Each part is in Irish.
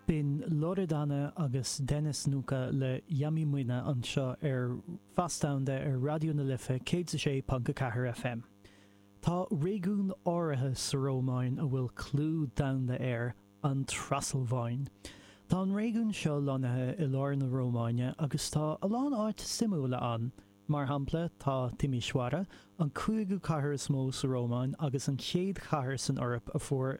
B'in Loredana agus Denis Nuka le Yami Moina anseo ar Fios Domhanda ar Raidió na Life 106.4 FM. Tá réigiún áirithe sa Rómáin a bhfuil clú domhanda air, an Trasalváin. Tá an réigiún seo lonnaithe i lár na Rómáine agus tá a lán áit suimiúla ann. Mar shampla, tá Timișoara, an cúigiú cathair is mó sa Rómáin agus an chéad chathair san Eoraip a fuair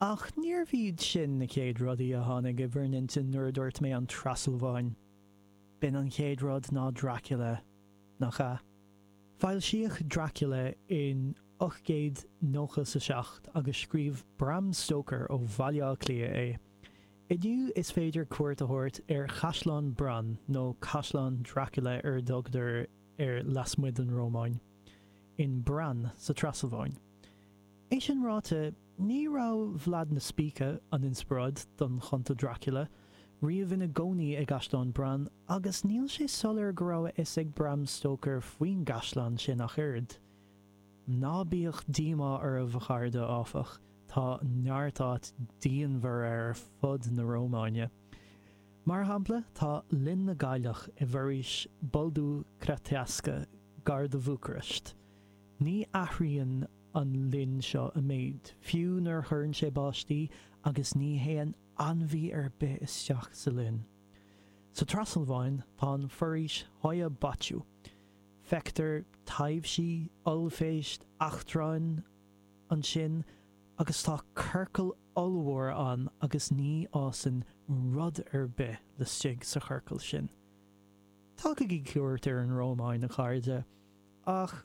Ach níorbh iad sin na chéad rudaí a tháinig in bhur n-intinn nuair a dúirt mé an Trasalváin. B'é an chéad rud ná Dracula, nach ea? Foilsíodh Dracula in ocht gcéad nócha is a seacht agus scríobh Bram Stoker ó Bhaile Átha Cliath é. Inniu is féidir cuairt a thabhairt ar Chaisleán Bran, nó Caisleán Dracula ar a dtugtar air lasmuigh den Rómáin, in Bran sa Trasalváin. É sin ráite, ní raibh Vlad na Spíce, an inspioráid don Chunta Dracula, riamh ina chónaí i gcaisleán Bran, agus níl sé soiléir go raibh a fhios ag Bram Stoker faoin gcaisleán sin ach oiread. Ná bíodh díomá oraibh, a chairde, áfach, tá neart áit diamhair ar fud na Rómáine. Mar shampla, tá Linn na gCailleach i bhforaois Boldu Crețeasca gar do Bhúcairist. Ní athraíonn. an linn seo a méid, fiú nuair a chuireann sé báistí agus ní théann ainmhí ar bith isteach sa linn. Sa Trasalváin, tá an foraois Hoia Baciu. Feictear taibhsí, ollphéist, eachtráin ansin agus tá ciorcal ollmhór ann agus ní fhásann rud ar bith laistigh sa chiorcal sin. Tugaigí cuairt ar an Rómáin, a chairde, ach.